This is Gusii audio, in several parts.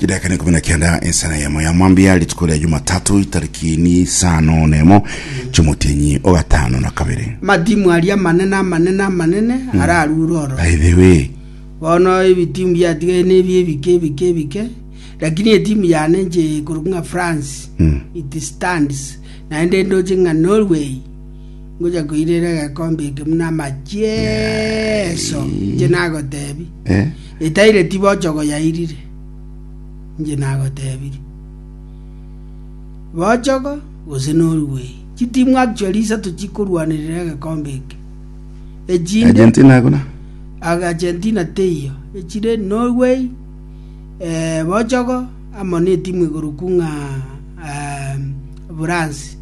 Chidakika nekomi na kenda ensana yemo ya mwambia rituko ria jumatatu itariki ni isano nemo chomotienyi ogatano na kabere Amatimu aria amanene amanene amanene hmm. ararure oro. By the way. Bono ebitimu biatigaire nebi ebike ebike ebike. Lakini etimu yane nje korokwa France. Mm. It stands. Naende ndoche ng'a Norway. ngocha koirera egekombe eke buna amachieso inche nagotebi Eh? etaire tibochogo yairire inche nagotebiri bochogo gose norway chitimu actually isato chikorwanerera egekombe eke echinde Argentina akona. aga argentina teiyo echire norway eh, bochogo amo na etimu igoro kung'a um, france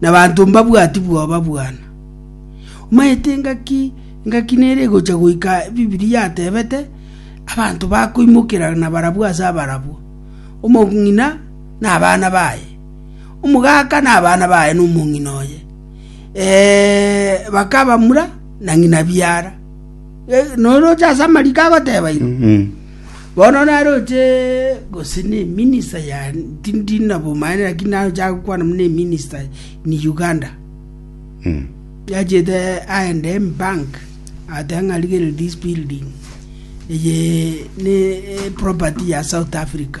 Nabaanto mbabwati bwoba bwane. Omanyete engaki engaki nere egocha goika Ebibilia yatebete, Abanto bakoimokera nabarabwo ase abarabwo, omong'ina nabana baye, omogaka nabana baye nomong'ina oye, ee, bakaba mura na ng'ina biara. Noroche ase amariko agoteba ira? Bono naroche gose neminista ya tindi nabomanyete lakini naroche agokwana buna eminista in Uganda. Mm. Yachete aende in bank atanga ng'a rigere this building eye ne eh, property ya South Africa.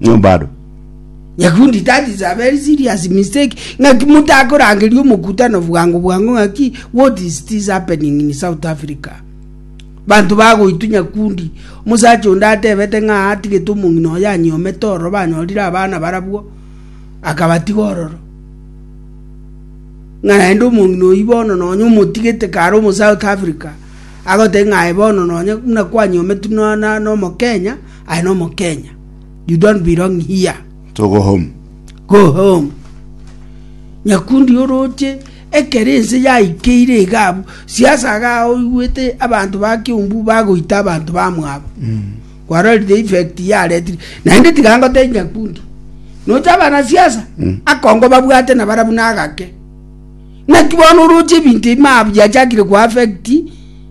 Nyo bado. Nyakundi that is a very serious mistake ng'aki mutakorangeria omokutano bwango bwango ng'aki what is this happening in south africa banto bagoitu nyakundi omosacha onde atebete ng'a atigete omong'ina oyo anyomete ororo banyorire abana barabwo akabatiga ororo ng'a naende omong'ina oyi bono nonya omotigete kare omo south africa agote ng'aye bono nonya buna kwanyometu nomokenya no I am no Mukenya. You don't belong here. To go home. Go home. Nyakundi oroche ekero ense yaikeire iga abwo, siasa iga oigwete abanto ba Kiumbu bagoita abanto bamwabo. Mm. Kwarorire effect yaretire. Naende tiga ngotebi Nyakundi. Nocha abana siasa mm. akongo babwate na barabu nagake. Naki bono oroche ebinto ebi mabu yachakire kwa affect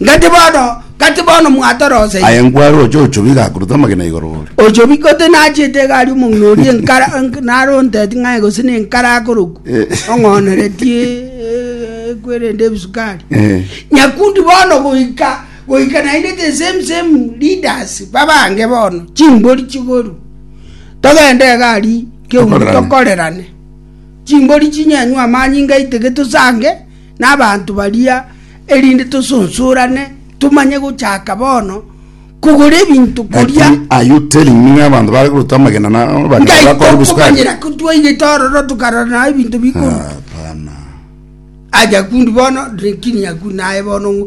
Gati bono, gati bono mwatoroseire. Aye nkware oche ochobi gakorute amagena igoro ore. Ochobi goti nachiete iga aria omong'ina oria enkara enk- naro onteti ng'aye gose ne enkara akorokwa Eh. ong'oneretie eh, ekwe erende ebisukari Eh. nyakundi bono goika goika naende the same same leaders babange bono chimbori chigoru togende iga aria keumbu Tokorerane. tokorerane chimbori chinyenywe amanyinga aiteke tosange nabaanto baria, erinde tosonsorane, tomanye gochaka bono kogora ebinto koria. Lakini are you telling me ng'a abanto bare korutwa amagena na abanyene Ngai bakore obosuku ake? tokomanyera ko twaigete ororo tokarora na ebinto bikorwa. Hapana. Aja kundi bono, lakini akuna naye bono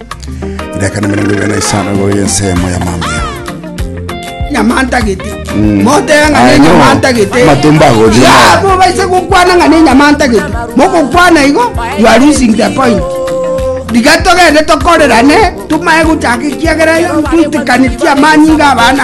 Ndakana mirongo ibere na isano igoro y'ensemo ya mambia. nyamantagete motega ng'a Aye no, nenyamantagete amatumbo agothima. ya mobaise gokwana ng'a nenyamantagete mogokwana igo you are losing the point riga togende tokorerane tumaye gochaka ekiagera twitikanitie amanyinga abana